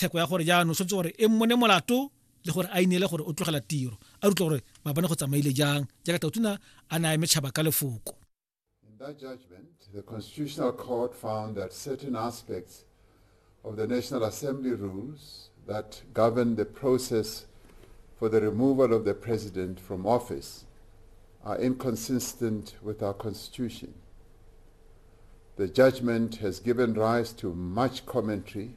theko ya gore jaanong tshwanetse gore e mmone molato le gore a ineele gore o tlogela tiro a rutlwa gore mabane go tsamaile jang jaaka tautuna a naya metšhaba ka lefoko that judgment, the Constitutional Court found that certain aspects of the National Assembly rules that govern the process for the removal of the President from office are inconsistent with our Constitution. The judgment has given rise to much commentary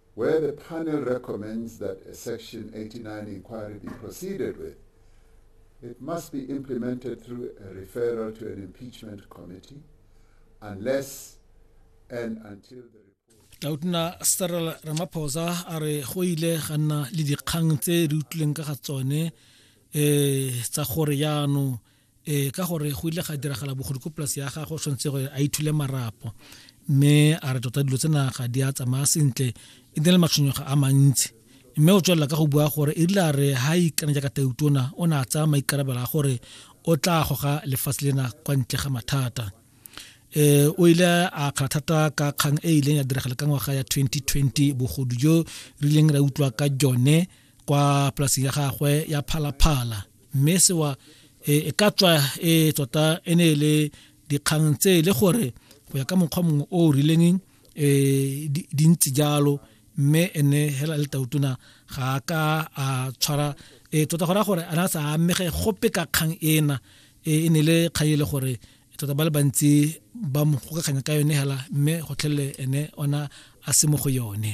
where the panel recommends that a Section 89 inquiry be proceeded with, it must be implemented through a referral to an impeachment committee unless and until the tautona cyril ramaphosa a re go ile ga nna le dikgang tse re utlwileng ka ga tsone um tsa gore yaanong ee ka gore go ile ga diragala bogodi ko polase ya gago tshwanetse gore a ithule marapo mme a re tota dilo tsena ga di a tsamaya sentle e ne le matshwenyego a mantsi mme o tswelela ka go bua gore e rile a re ga a ikana jaaka tautona o ne a tsaya maikarabelo a gore o tla goga lefatshe lena kwa ntle ga mathata eh o ile a kgala thata ka kgang e ileng ya diragala ka ngwaga ya 2020 bogodu jo re ileng ra utlwa ka jone kwa polaseng ya gagwe ya phalaphala mme sewa e, e ka tswa e tota e ne e le dikgang tse e le gore go ya ka mokgwa mongwe o o rileng um di ntse jalo mme ene hela le tautona ga a ka a tshwara um tota go raya gore a na sa amege gope ka kgang ena e ne le kgang e le gore tota ba le bantsi ba mo gokakganya ka yone hela mme gotlhelele ene ona a se mo go yone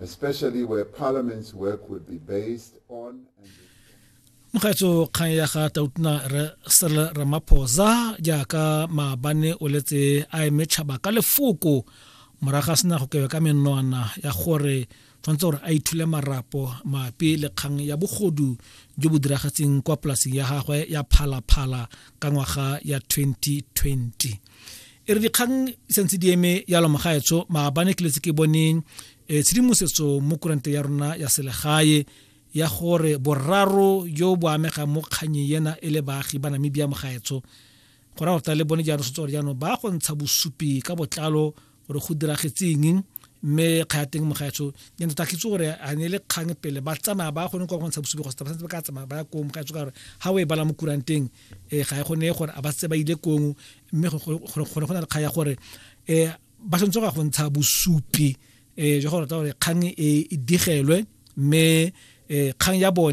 especially where parliament's work would be based on mogatso kgang ya ga tautona sel ramaphosa jaaka maabane o letse a eme tšhaba ka lefoko moraga sena go kewe ka menwana ya gore tshwanetse gore a ithule marapo mapi le kgang ya bogodu jo bo diragatseng kwa polaseng ya gagwe ya phalaphala ka ngwaga ya 2020 e re dikgang sentse di eme yalo mogaetsho maabane ke letse ke boneng e, tshedimosetso mo kurante ya rona ya selegae ya gore boraro yo bo amega mo kganye yena e le baagi ba namibia mogaetsho go ra gore le bone jaanong setse gore jaanong ba go ntsha bosupi ka botlalo gore go diragetseng mme kga ya teng mo gaetsho ke ntse ke tso gore a ne le kgang pele ba tsamaya ba gone kwa go ntsha bosupi go stapa ba ka tsamaya ba ya kong ga gore ha o e bala mo kuranteng eh ga e gone gore a ba tse ba ile kong mme gore gore go na le kga ya gore eh ba sentse go ntsha bosupi eh jo gore tsa gore kgang e, e digelwe mme eh kgang ya bone